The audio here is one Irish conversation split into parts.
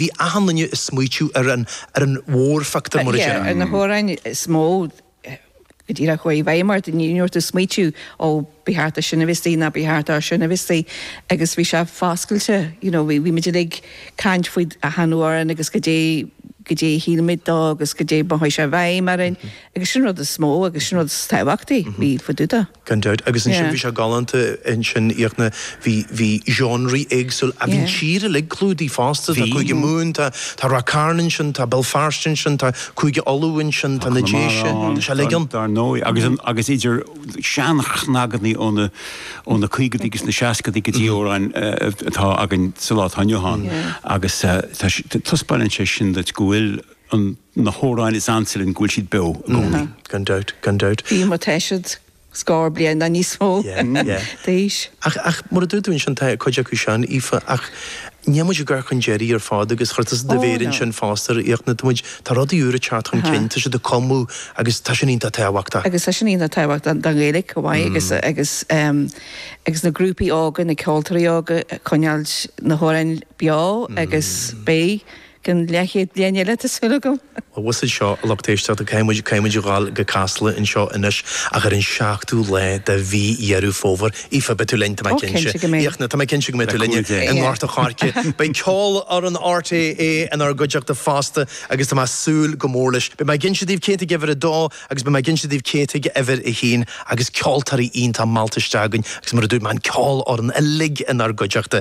Bhí achan duine ag smaoitiú ar an mhórphictiúr, mar a déarfá. Ar na hamhráin is mó go díreach a chuaigh i bhfeidhm ort, ní raibh ort smaoitiú, ó ba cheart dó sin a bheith istigh ná ba cheart dó sin a bheith istigh agus bhí sé foscailte, you know, bhí muid uilig ag caint faoi achan amhrán agus goidé, goidé a shíl muid de agus goidé a mhothaigh sé i bhfeidhm orainn. Agus sin rud is mó agus sin rud is tábhachtaí, níl dabht ar bith. Gan dabht. Agus ansin bhí sé galánta ansin a Fhiachna, bhí, bhí seánraí éagsúla, bhí an tír uilig clúdaithe fosta, tá Cúige Mumhan, tá, tá Ráth Chairn ansin, tá Béal Feirste ansin, tá Cúige Uladh ansin, tá na Déise, tá sé uilig ann. Dar ndóigh, agus an, agus idir seanchnagaí ó na, ó na caogaidí agus na seascaidí go dtí amhráin atá againn sa lá atá inniu ann, agus tá, tá, taispeánann sé sin duit go bhfuil, an, na hamhráin is ansa linn, go bhfuil siad beo i gcónaí. Gan dabht, gan dabht. Bhí mar, tá siad scór bliain nó níos mó, d'aois. Ach, ach, mar a dúirt tú ansin, tá cuid acu sean, Aoife, ach níl muid á gcur chun deiridh ar fad agus chuir tusa do mhéar ansin fosta air, a Fhiachna, tá muid, tá rudaí úra ag teacht chun cinn, tá siad ag cumadh agus tá sin iontach tábhachtach. Agus tá sin iontach tábhachtach don Ghaeilge chomh maith agus, agus, agus na grúpaí óga, na ceoltóirí óga ag coinneáilt na hamhráin beo agus beidh, Go ceann leathchéad bliain eile, tá súil agam! Bhuel siúd seo, a lucht éisteachta, caithfidh muid, caithfidh muid a ghabháil go Casla anseo anois ach ar an seachtú lá de Mhí Dheireadh Fómhair. Aoife, beidh tú linn, tá mé Ó, cinnte cinnte go mbeidh. Fiachna, tá mé cinnte go mbeidh tú linn i nGort an Choirce. Beidh Ceolfhoireann RTÉ inár gcuideachta fosta agus tá mé ag súil go mór leis. Beidh mé ag inse daoibh cé a tháinig uimhir a dó agus beidh mé ag inse daoibh cé a tháinig uimhir a haon agus ceoltóirí iontacha meallta isteach againn agus mar a dúirt mé, an cheolfhoireann uilig inár gcuideachta.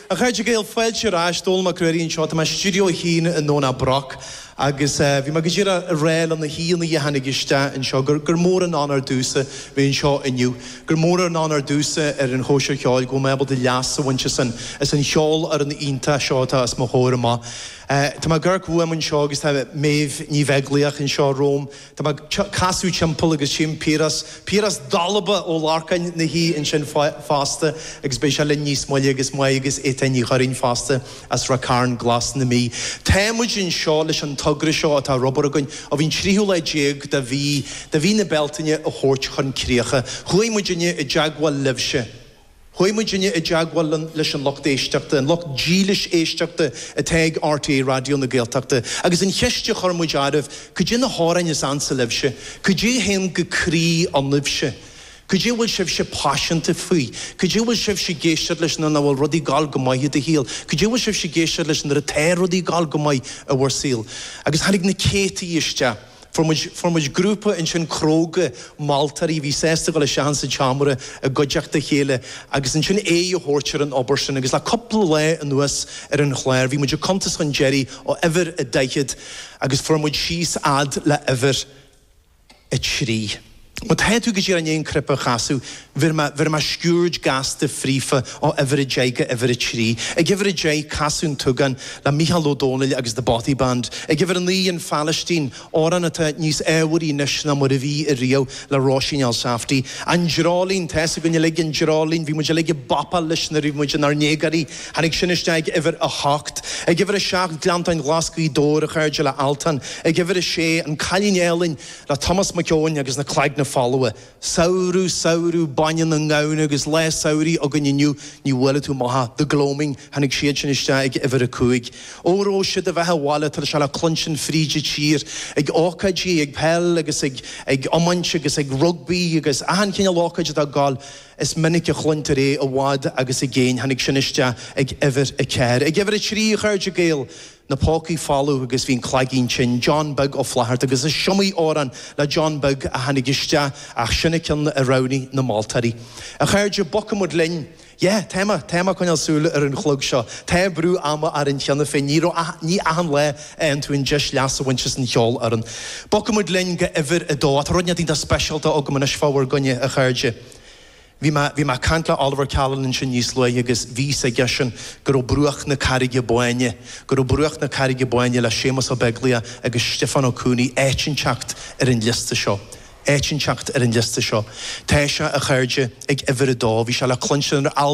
A chairde Gael, fáilte ar ais, Dónall Mac Ruairí anseo. Tá mé i stiúideo a hAon i nDomhnach Broc agus bhí mé go díreach ag rá le na haíonna a tháinig isteach anseo gur mór an onóir domhsa bheith anseo inniu, gur mór an onóir domhsa ar an Chóisir Cheoil go bhfuil mé ábalta leas a bhaint as an cheolfhoireann iontach seo atá os mo chomhair amach. Tá MacDara Yeates anseo agus tá Méabh Ní Bheaglaoich anseo romham. Tá mé ag casadh timpeall agus chím Piaras, Piaras Dubh Ó Lorcáin 'na shuí ansin fosta agus beidh sé linn níos moille agus Máire agus Étáin Ní Churraoin fosta as Ráth Chairn Glas na Mí. Tá muid anseo leis an togra seo atá idir lámha againn ó bhí an tríú lá déag de mhí de mhí na Bealtaine a thabhairt chun críocha. Chuaigh muidinne i dteagmháil libhse. Chuaigh muidinne i dteagmháil leis an lucht éisteachta, an lucht dílis éisteachta atá ag RTÉ Raidió na Gaeltachta, agus an cheist a chuir muid oraibh, cad é na hamhráin is ansa libhse? Cad é a théann go croí ionaibhse? Cad é a bhfuil sibhse paiseanta faoi? Cad é a bhfuil sibhse ag éisteacht leis nuair nach bhfuil rudaí ag dul go maith i do shaol? Cad é a bhfuil sibhse ag éisteacht leis nuair atá rudaí ag dul go maith i bhur saol? Agus tháinig na céadtaí isteach. Fuair muid, fuair muid grúpa ansin cróga moltóirí a bhí sásta dul isteach ins an tseomra i gcuideachta a chéile agus ansin aghaidh a thabhairt ar an obair sin agus le cúpla lá anuas ar an chlár bhí muid ag cuntas chun deiridh ó uimhir a daichead agus fuair muid síos fhad le uimhir a trí. Má tá tú go díreach i ndiaidh an cnaipe a chasadh bhéarfaidh mé sciuird gasta fríofa ó uimhir a deich go uimhir a trí. Ag uimhir a deich Casadh an tSúgáin le Mícheál Ó Domhnaill agus The Bothy Band. Ag uimhir a naoi An Phailistín, amhrán atá níos ábharthaí anois ná mar a bhí i riamh, le Róisín Elsafty. An Dreoilín, tá 'fhios againn uilig an Dreoilín, bhí muid uilig ag bopáil leis nuair a bhí muid inár ndéagáirí. Tháinig sin isteach ag uimhir a hocht. Ag uimhir a seacht Gleanntáin Ghlas Ghaoth Dobhair, a chairde le Altan. Ag uimhir a sé An Cailín Álainn. le Tomás Mac Eoin agus Na Cloigne Folmha, Samhradh, samhradh, bainne na ngamhna agus lá samhraidh againn inniu, ní bhfuair tú maith, The Gloaming, tháinig siad sin isteach ag uimhir a cúig. Óró Sé do Bheatha Abhaile tá sé le cluinstin fríd a' tír ag ócáidí, ag peil agus ag ag iomáint agus ag rugbaí agus achan chineál ócáid atá ag gabháil, is minic a chluintear é i bhfad agus i gcéin, tháinig sin isteach ag uimhir a ceathair. Ag uimhir a trí, a chairde Gael, na pócaí folamh agus bíonn an cloigeann tinn, John Beag Ó Flatharta agus is iomaí amhrán le John Beag a tháinig isteach ach sin a cionn a roghnaigh na moltóirí. A chairde, bogfaidh muid linn! Yeah, tá mé, tá mé ag coinneáil súil ar an chlog seo, tá brú ama orainn cheana féin, ní raibh ach, ní achan lá a fhaigheann tú an deis leas a bhaint as an cheolfhoireann. Bogfaidh muid linn go uimhir a dó, tá rud inteacht iontach speisialta agam anois fá bhur gcoinne, a chairde. Bhí mé, bhí mé ag caint le Oliver Callan ansin níos luaithe agus bhí fhios aigesean go raibh Bruach na Carraige Báine, go raibh Bruach na Carraige Báine le Séamus Ó Beaglaoich agus Stiofán Ó Cuanaigh áit inteacht ar an liosta seo, áit inteacht ar an liosta seo. Tá sé, a chairde, ag uimhir a dó. Bhí sé le cluinstin ar albam.